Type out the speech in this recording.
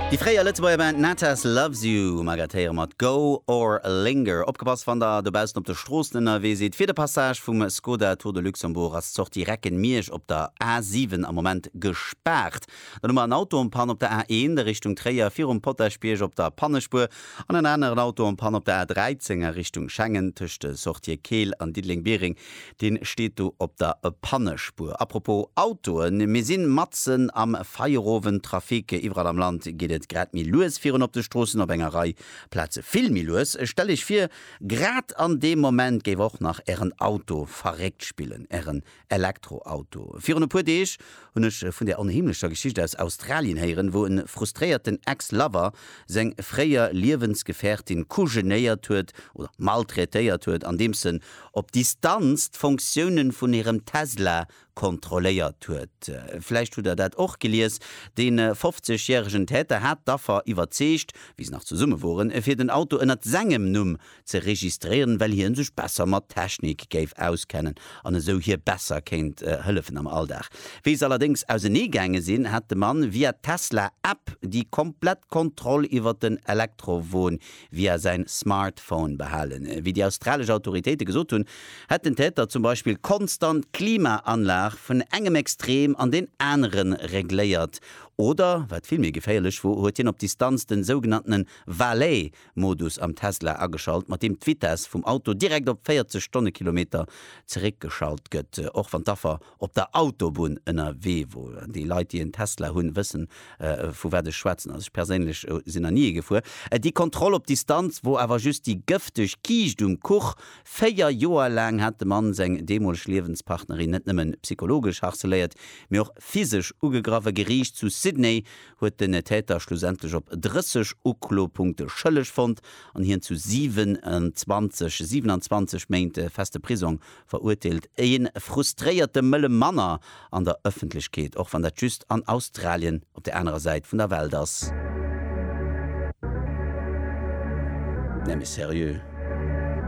Déi fréier Lëtzebuerger Band Natas Loves You um Agathe héiere mat Go or Linger. Opgepasst wann der dobaussen op de Stroossen ënnerwee sidd, Fir de Passage vum Skoda Tour de Luxembourg ass d'Sortie Recken-Miersch op der A 7 am Moment gespaart. Dann hu mer en Auto en Panne op der A 1 a Richtung Tréier virum Potaschbierg op der Pannespuer an en aneren Auto en Panne op der A 13 a Richtung Schengen tëscht de Sortië Keel an Diddeleng-Biereng Deen steet do op der Pannespuer. Apropos Autoen, mir sinn matzen am Feierowend Trafic. Iwwerall am Land geet et grad méi lues virun op de Stroossen, op enger Rei Plaze vill méi lues. Stellt Iech vir, grad an deem Moment géif och nach ären Auto verréckt spillen, ären Elektroauto. Virun e puer Deeg hunn ech vun där onheemlecher Geschicht aus Australien héieren, wou e frustréierten Ex-Lover seng fréier Liewensgefährtin kujenéiert huet oder maltraitéiert huet, andeems en op Distanz d'Fonctiounen vun hirem Tesla kontrolléiert huet. Vläicht hutt der dat och gelies. De 50 järegen Täter hat d'Affer iwwerzeegt, wéi se nach zesumme woren, fir den Auto ënnert sengem Numm ze registréieren, well hien sech besser mat Technik géif auskennen an esou hir besser kéint hëllefen am Alldag. Wéi se allerdéngs ausenee gaange sinn, hat de Mann via d'Tesla-App déi komplett Kontroll iwwert den Elektrowon via säin Smartphone behalen. Wéi déi australesch Autoritéite gesot hunn, hätt den Täter zum Beispill konstant d'Klimaanlag vun engem Extrem an deen anere regléiert oder, wat vill méi geféierlech wor, huet hien op Distanz den sougenanntene Valet Modus am Tesla ageschalt, mat deem d'Vitess vum Auto direkt op 40 Stonnekilometer zeréckgeschalt gëtt, och wann d'Affer op der Autobunn ënnerwee wor. An déi Leit, déi en Tesla hunn, wëssen, vu wat ech schwätzen. Also ech perséinlech sinn nach ni ee gefuer. Déi Kontroll op Distanz wor awer just déi gëfteg Kiischt um Kuch. Véier Joer laang hat de Mann seng deemoleg Liewenspartnerin net nëmme psychologesch harceléiert, mee och physesch ugegraff. E Geriicht zu Sydney huet den Täter schlussendlech op 30 Uklopunkte schëlleg fonnt an hien zu 27, 27 Méint feste Prisong Verurteelt een frustréierte mëlle Manner an der Ëffentlechkeet, och wann dat just an Australien op der anerer Säit vun der Welt ass? Nee mee seriö?